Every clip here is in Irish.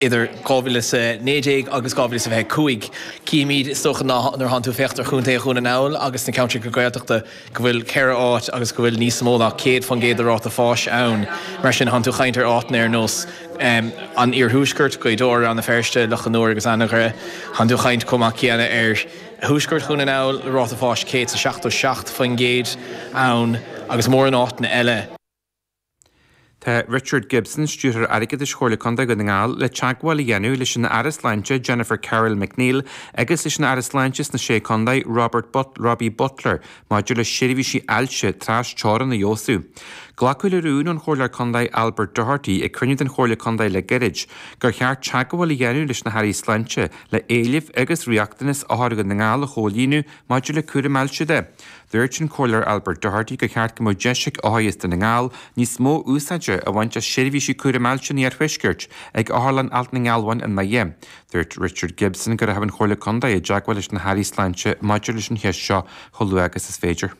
idir 2019 agus 2025. Címid, is dócha, ná nuair a thánn tú ag féachaint ar chontae Dhún na nGall agus na ceantracha Gaeltachta go bhfuil ceithre áit agus go bhfuil níos mó ná 100% de ráta fáis ann. Mar sin thánn tú ag caint ar áiteanna ar nós an iarthuaiscirt, Gaoth Dobhair, Rann na Feirste, Loch an Iúir agus Anagaire. Thánn tú ag caint chomh maith céanna ar thuaisceart Dhún na nGall le ráta fáis 177% ann agus mórán áiteanna eile. Tá Richard Gibson, Stiúrthóir Airgeadais Chomhairle Contae Dhún na nGall, le teagmháil a dhéanamh leis an Aire Sláinte Jennifer Carroll MacNeill agus leis an Aire Sláinte sna Sé Chontae Robert Robbie Butler maidir le seirbhísí ailse trasteorann a fheabhsú. Glacadh le rún ón Chomhairleoir Contae Albert Doherty ag cruinniú den Chomhairle Contae le gairid gur cheart teagmháil a dhéanamh leis na hAirí Sláinte le éilimh agus riachtanas othair Dhún na nGall a chomhlíonadh maidir le cúram ailse de. Dúirt an Comhairleoir Albert Doherty gur cheart go mbeadh deis ag othair as Dún na nGall níos mó úsáide a bhaint as seirbhísí cúraim ailse an iarthuaiscirt ag Otharlann Allt na nGealbháin i nDoire. Dúirt Richard Gibson go rachaidh an Chomhairle Contae i dteagmháil leis na hAirí Sláinte maidir leis an cheist seo chomh luath agus is féidir.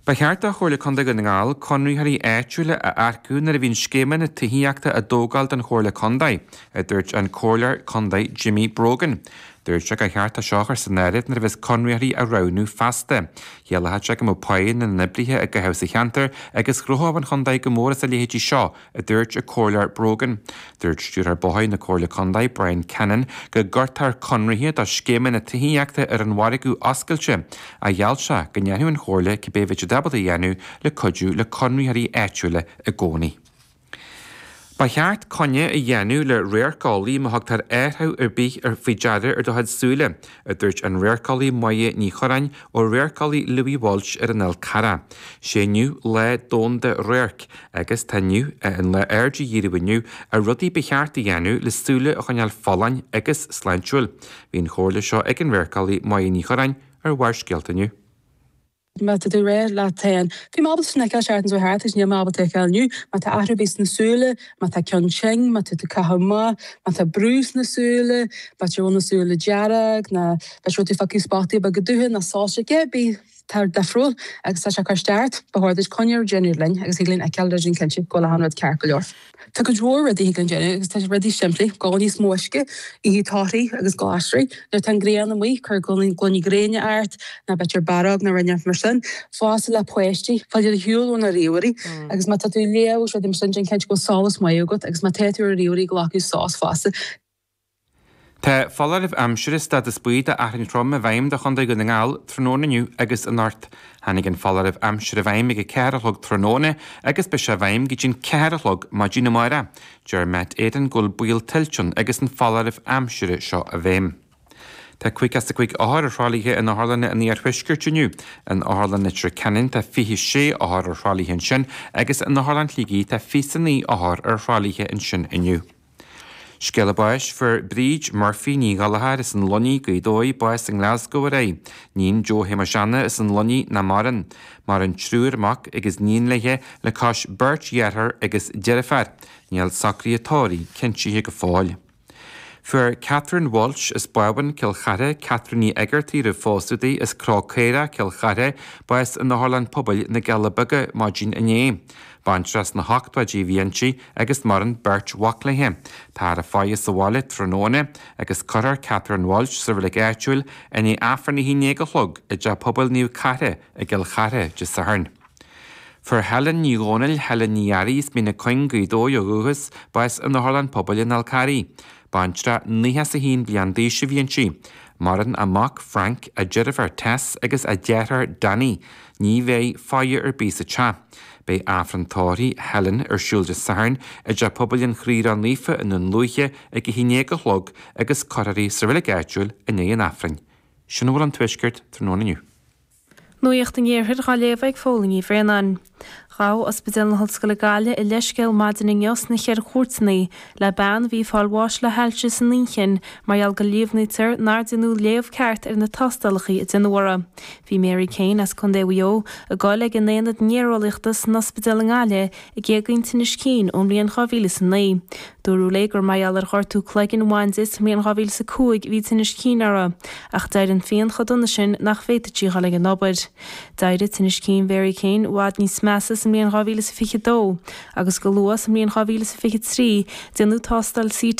Ba cheart do Chomhairle Contae Dhún na nGall conraitheoirí áitiúla a earcú nuair a bhíonn scéimeanna tithíochta á dtógáil don Chomhairle Contae, a dúirt an Comhairleoir Contae Jimmy Brogan. Dúirt sé gur cheart é seo a chur san áireamh nuair a bheas conraitheoirí á roghnú feasta. Chiallódh sé go mbeadh páighe na n-oibrithe á gcaitheamh sa cheantar agus ghnóthódh an chontae go mór as a leithéidí seo, a dúirt an Comhairleoir Brogan. Dúirt Stiúrthóir Bóithre na Comhairle Contae, Bryan Cannon, go gcuirtear conraithe do scéimeanna tithíochta ar an mhargadh oscailte ach gheall sé go ndéanfadh an Chomhairle cibé bhí siad ábalta a dhéanamh le cuidiú le conraitheoirí áitiúla i gcónaí. Ba cheart coinne a dhéanamh le radharceolaí má thugtar athruithe ar bith faoi deara ar do chuid súile, a dúirt an radharceolaí Moya Ní Chuireáin ó Radharceolaí Louis Walsh ar an Fhál Charrach. Sé inniu Lá Domhanda Radhairc agus tá inniu ann le aird a dhíriú inniu ar rudaí ba cheart a dhéanamh le súile a choinneáil folláin agus sláintiúil. Bhí an chomhairle seo ag an radharceolaí Moya Ní Chuireáin ar Bharrscéalta inniu. Má tá tú ag rá leat féin, bhí mé ábalta sin a fheiceáil, seachtain seo thart agus níl mé ábalta a fheiceáil inniu. Má tá athrú ar bith sna súile, má tá ceann tinn, má tá tú caitheamh amach, má tá brú sna súile, má tá, bhuel, na súile dearg, ná má tá tú ag feiceáil spotaí beaga dubha ná soilse, cé ar bith atá difriúil agus tá sé cur isteach ort, ba chóir duit coinne a dhéanamh linn agus thig linn fheiceáil agus déanamh cinnte go bhfuil achan rud ceart go leor. Tá go leor rudaí a thig linn a dhéanamh agus tá rudaí simplí, ag ól níos mó uisce, ith torthaí agus glasraí, nuair atá an ghrian amuigh cuir gloiní gréine ort, nó b'fhéidir bearád nó rud inteacht mar sin, fosta le páistí, fáil am ar shiúl ó na ríomhairí agus má tá tú ag léamh agus rudaí mar sin déan cinnte go bhfuil solas maith agat agus má tá tú ar an ríomhaire glacadh sos fosta. Tá foláireamh aimsire stádas buí d'fhearthainn throm i bhfeidhm do Chontae Dhún na nGall tráthnóna inniu agus anocht. Tháinig an foláireamh aimsire i bhfeidhm ag a ceathair a chlog tráthnóna agus beidh sé i bhfeidhm go dtí an ceathair a chlog maidin amárach. Deir Met Éireann go bhfuil baol tuilte ann agus an foláireamh aimsire seo i bhfeidhm. Tá 55 othar ar thralaithe in otharlanna an iarthuaiscirt inniu. In Otharlann Leitir Ceanainn tá 26 othar ar thralaithe ansin agus in Otharlann Shligigh tá 29 othar ar thralaithe ansin inniu. Scéala báis fuair Bríd Murphy, Ní Ghallchóir, as an Luinnigh, Gaoth Dobhair, bás i nGlasgow aréir, iníon Joe Shéamuis Anna as an Luinnigh nach maireann. Maireann triúr mac agus iníon léi le cois beirt dheartháir agus deirfiúr. Níl socraithe a tórraimh cinntithe go fóill. Fuair Catherine Walsh as Bábhún, Cill Chartha, Catherine Ní Eigeartaigh roimh phósadh di as Cró Caora, Cill Chartha, bás in Otharlann Pobail na gCealla Beaga maidin inné. Baintreach sna hochtóidí a bhí inti. agus maireann beirt mhac léi. Táthar á faire sa bhaile tráthnóna agus cuirfear Catherine Walsh sa reilig áitiúil i ndiaidh Aifrinn a haon déag a chlog i dTeach Pobail Naomh Cartha i gCill Chartha Dé Sathairn. Fuair Helen Ní Dhomhnaill, Helen Ní Fhearraigh as Mín na Cuinge, Gaoth Dobhair ó dhúchas, bás in Otharlann Pobail an Fháil Charraigh. Baintreach nócha is a haon bliain d'aois a bhí inti. Maireann a mac, Frank, a deirfiúr Tess agus a deartháir Danny. Ní bheidh faire ar bith sa teach. Beidh Aifreann Tórraimh Helen ar siúl Dé Sathairn i dTeach Pobail an Chroí Ró-Naofa i nDún Lúiche ag a 11 a chlog agus cuirfear í sa reilig áitiúil i ndiaidh an Aifrinn. Sin a bhfuil ón Tuaisceart tráthnóna inniu. Nuacht an Iarthair dhá léamh ag Póilín Ní Bhraonáin. Ghabh Ospidéal na hOllscoile Gaillimh a leithscéal maidin inniu sna Ceithre Cúirteanna le bean a bhí ag fáil bháis le hailse san inchinn mar gheall go líomhnaítear nár deineadh léamh ceart ar na tástálacha a deineadh uirthi. Bhí Mary Kane as Contae Mhaigh Eo ag gabháil ag an aonad néareolaíochta san ospidéal i nGaillimh ag éagaoineadh tinnis cinn ón mbliain 2009. Dúradh léi gur mar gheall ar ghortú cloiginn a bhain di sa mbliain 2005 a bhí tinneas cinn uirthi, ach d'éirigh an phian chomh dona sin nach bhféadfadh sí dhul ag an obair. D'éirigh tinneas cinn Mhary Kane i bhfad níos measa sa mbliain 2022 agus go luath sa mbliain 2023 déanadh tástáil CT